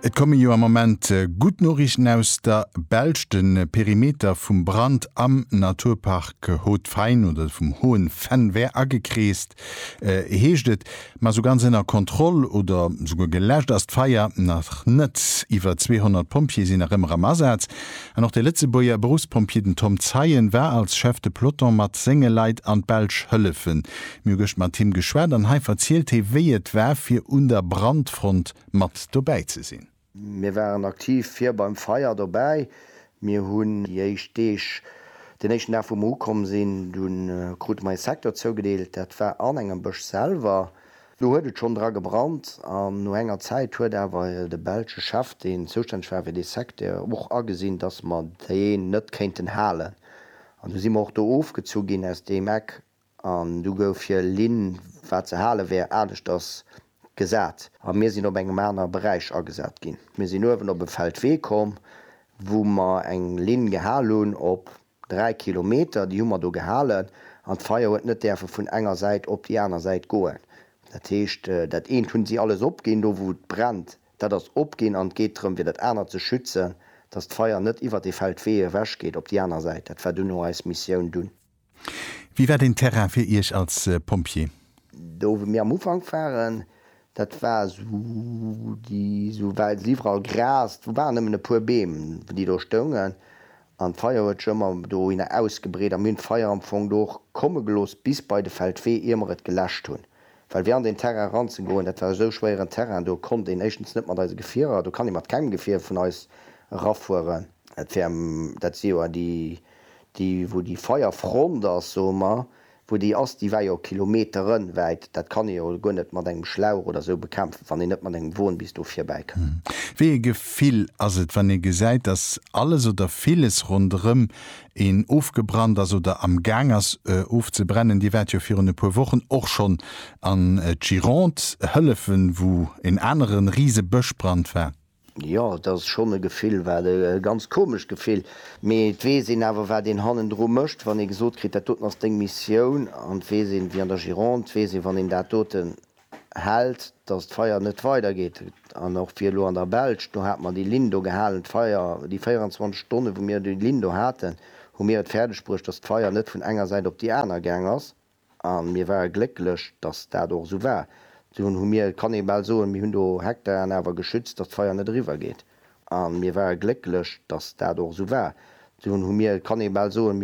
Et komme jo am Moment gutt Noriichten aus der Belsch. De Perimeter vum Brand am Naturpark Haut-Fain oder vum Hohen Venn wär agekreest, heescht et. Ma sou ganz ënner Kontroll oder souguer geläscht ass d'Feier nach net. Iwwer 200 Pompjeeë sinn nach ëmmer am Asaz an och de Lëtzebuerger Beruffspompjee, den Tom Zeien, war als Chef de peloton mat senge Leit an d'Belsch hëllefe Mir hu gëscht mat him geschwat an hei verzielt hee wéi et war fir un der Brandfront mat dobäi ze sinn. Mir waren aktiv vir beim Feier dobäi. Mir hunn déi éischt Deeg, den éischten Dag wou mer ukomm sinn, du krute mer ee Secteur zougedeelt, dat war an engem Bësch selwer. Do huet et schonn dra gebrannt an no enger Zäit huet awer de belsche Chef, deen zoustänneg war fir dee Secteur och agesinn, dass mer deen net kéinten halen an du si mer och do ofgezu ginn aus deem Eck An du gouf fir Linn, wat ze hale wär, aneschters gesat. A mir sinn op engem anere Beräich agesat ginn. Mir sinn uewen op e Feldwee komm, wou mer eng Linn gehal hunn op dräi Kilometer. Déi hu mer do gehalen an d'Feier huet net däerfe vun enger Säit op déi aner Säit goen. Dat heescht, dat eent hunn si alles opginn, do wou et brennt, dat ass opginn an et geet drëm, fir dat anert ze schützen, dass d'Feier net iwwert dee Feldwee ewechgeet op déi aner Säit. Dat war duerno eis Missioun. Dunn. Wéi war den Terrain fir Iech als Pompjee? Do wou mir am Ufank waren, dat war esou déi esou well se iwwerall Gras, do waren nëmmen e puer Beem déi do stoungen an d'Feier huet sech ëmmer dohinner ausgebreet a mir hunn d'Feier am Fong do och komme gelooss bis bei de Feldwee ier mer et geläscht hunn, well fir an deen Terrain eran ze goen, dat war esou schwéieren Terrain, do konnt een éischtens net mat eise Gefierer, do kann ee mat kengem Gefier vun eis erafueren. Dat wär, dat si jo déi Déi, wou déi Feierfront ass, soe mer, wou déi ass, déi war jo kilometerenwäit. Dat kann ee jo guer net mat engem Schlauch oder esou bekämpfen, wann een net mat engem Won bis do virbäi kann. Wéi ee Gefill ass et, wann ee gesäit, dass alles oder villes ronderëm een ofgebrannt ass oder am Gaang ass ofzebrennen? Dir waart jo virun e puer Wochen och schonn an d'Gironde hëllefen, wou en anere Risebëschbrand war. Jo, et ass schonn e Gefill, wat e ganz komescht Gefill, mee et weess een awer, wat een hannendru mécht, wann ee gesot kritt, dat doten ass deng Missioun, an et weess een, wéi an der Gironde, et weess een, wann een dat doten hält, datt d'Feier net weidergeet. An och fir elo an der Belsch, do hat mer déi Linn do gehalen, d'Feier, déi 24 Stonnen, wou mir déi Linn do haten, hu mir et fäerdegbruecht, datt d'Feier net vun enger Säit op déi aner gaang ass. A mir ware glécklech, datt dat och esou war. Dunn hu mir, kann ee bal soen, mir hunn do Hektaren awer geschützt, datt d'Feier net eriwwergeet. A mir ware glécklech, datt dat och esou war. Dunn hu mir, kann ee bal soen, mir.